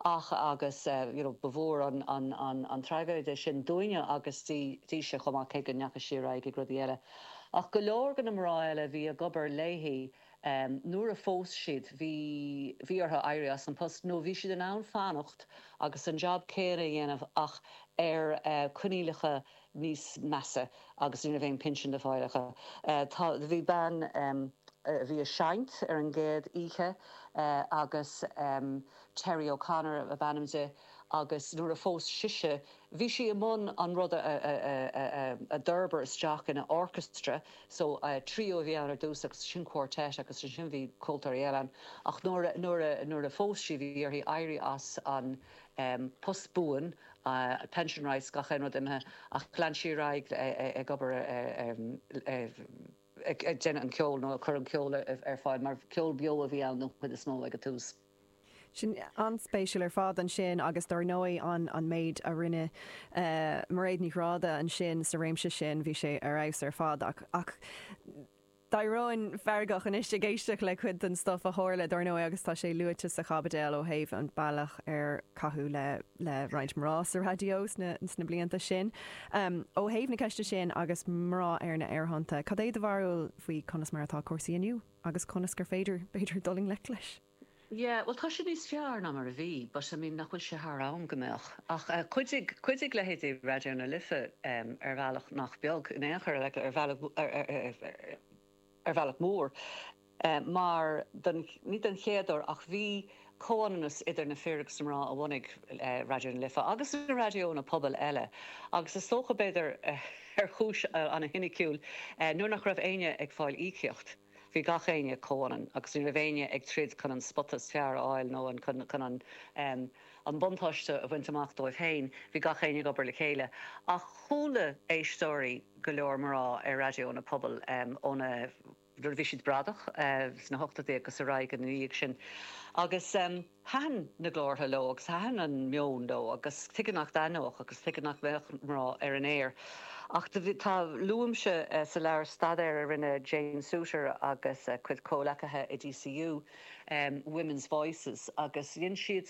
Ach, agus you know ba mhór an traigéide sin dúinne agus dise chomh maith, cé go ndeachaigh sí ar aghaidh ag rudaí eile. Ach go leor de na mná eile a bhí ag obair léi, nuair a phós siad bhí bhí orthu éirí as an post nó bhí siad in ann fanacht agus an jab céanna a dhéanamh ach ar coinníollacha níos measa agus ní raibh aon pinsean le fáil acu. Tá. Bhí bean a bhí ag seinnt ar an gcéad oíche agus Terry O'Connor ab ainm di agus nuair a phós sise bhí sí i mbun an rud a d'fhorbair isteach ina orchestra so trio a bhí ann ar dtús agus ansin quartet agus ansin bhí ceoltóirí eile ann ach nuair a nuair a phós sí bhí uirthi éirí as an em post buan eh pension rights gach aon rud imithe ach lean sí ar aghaidh ag obair eh em eh ag ag déanamh an ceol nó ag cur an ceol ar fáil mar ceol beo a bhí ann don chuid is mó ag an tús. An-spéisiúil ar fad ansin agus dár ndóigh an an méid a rinne eh Mairéad Ní Ghráda ansin sa réimse sin bhí sé ar fheabhas ar fad ach ach D'éirínn feargach anois ag éisteacht le cuid den stuff a tharla, dár ndóigh, agus tá sé luaite sa chaibideal ó thaobh an bealach ar caitheadh le le roinnt mná sa raidió sna sna blianta sin. Ó thaobh na ceiste sin agus mná ar na aerthonnta, cad é do bharúil faoi conas mar atá cúrsaí inniu agus conas gur féidir, b'fhéidir, dul i ngleic leis? Yeah, bhuel, tá sé níos fearr ná mar a bhí, but, I mean, nach bhfuil sé thar am go mbeadh? Ach chuidigh, chuidigh leithéidí Raidió na Life ar bhealach nach beag, in aon chor, like ar bhealach, ar bhealach mór, mar don, ní don chéad uair, ach bhí comhionannas idir na fir agus na mná a bhunaigh Raidió na Life, agus na raidiónna pobail eile, agus is dócha, b'fhéidir, ar chúis ana-chiniciúil, nuair nach raibh éinne ag fáil íocaíocht. Bhí gach éinne comhionann agus ní raibh éinne ag troid chun an spota is fearr a fháil nó chun an buntáiste a bhaint amach dóibh féin, bhí gach éinne ag obair le chéile. Ach chuala éisteoirí go leor mná ar raidiónna pobail óna, nuair a bhí siad bradach sna hochtóidí agus ar aghaidh ina dhiaidh sin agus. Thaitin na glórtha leo agus thaitin an meon leo agus tuige nach dtaitneodh agus tuige nach mbeadh mná ar an aer ach do bhí, tá, luaimse sa leabhar staidéar a rinne Jane Suiter agus a cuid comhghleacaithe i DCU, Women's Voices agus dhein siad.